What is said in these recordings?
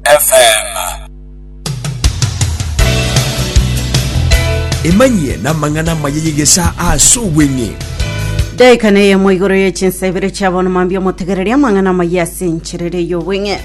FM. emanyie namang'ana amaya yegesa ase obweng'e daika neye mo igoro ye chinsa ibere chia bono mambia omotegereria amang'ana amaya ase encherere y'obweng'e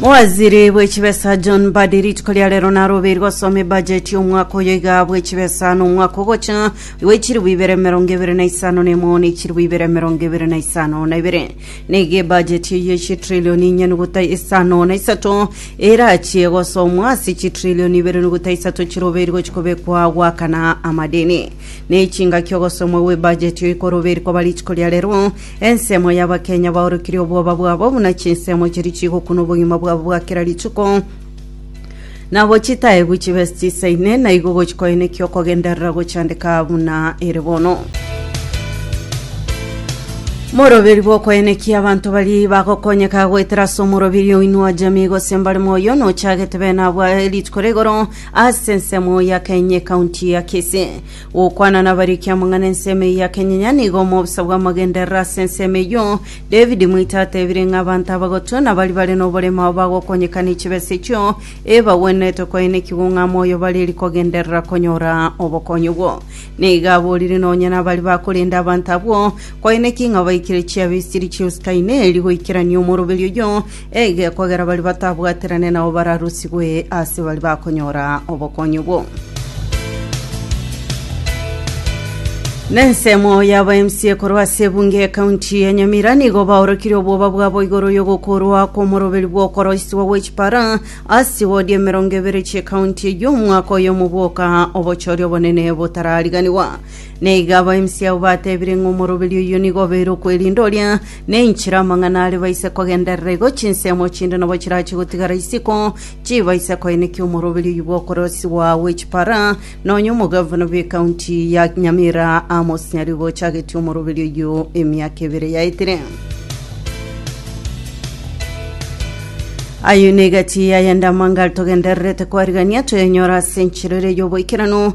mowaziri bw'echibesa john badi rituko ria rero narobeiri gosoma ebajeti y'omwaka oyo iga bw'echibesa na omwaka ogocha igo echiribu ibere emerongo ebere na isano na emo na echiribu ibere emerongo ebere na isano na ibere Nigo ebajeti eye ye chitrillioni inye nogota isano na isato erachie gosomwa ase chitrillioni ibere nogota isato chirobeiri gochia kobekwa goakana amadeni. Ne chingaki ogosomwa gw'ebajeti eye korobeiri koba rituko ria rero, ensemo y'Abakenya baorokirie obwoba bwabo buna chinsemo chiria chigokunwa obogima bwabo bwa kera rituko, Nabo chitaegwa chibe chisaine, na igo gochikoenekia okogenderera gochandeka buna ere bono. Moroberi bw'okoenekia abanto bari bagokonyeka goetera ase omorobiri oino wa jamii gose mbare moyo nochagete bene abwa rituko rigoro ase ensemo ya Kenye county ya Kisii Gokwana nabare ekiamang'ana ensemo eye ya kenyenya nigo omobisa bw'amagenderero ase ensemo eyio. David moito atebire ng'a abanto abagotu na baria bare noboremu aba bagokonyeka ne chibesa echio ebagwenerete koenekigwa ng'a moyo bare eri kogenderera konyora obokonyi obwo. Nigo aborire nonya nabaria bakorenda abanto abwo koenekia ng'a baikire chiabe esiri chi'eusi kaine eri goikerania omoroberi oyio Eige kogera baria batabwaterane nao bararusigwe ase baria bakonyora obokonyi obwo. Nensemo y'aba MC ekorwa ase ebunge y'ekaunti ya Nyamira nigo baorokirie obwoba bwabo igoro y'ogokorwa kw'omoroberi bw'okoroiswa gwe chipara ase wodi emerongo ebere chi'ekaunti eyio omwaka oyomo bwoka obochori obonene botarariganiwa. Neiga aba MC abo batebire ng'a omoroberi oyio nigo obeire okwerinda oria Nenchera amang'ana are baise kogenderera igo chinsemo chinde nabo chirache gotigara isiko, chibaise koenekia omoroberio oyio bw'okorosigwa gwe chipara, nonya omogavana bw'ekaunti ya Nyamira Amos Nyarigo ochagetie omoroberio oyio emiaka ebere yaetire. Ayio negati yayende amangari togendererete koarigania toyanyora ase enchera ere y'oboikeranu,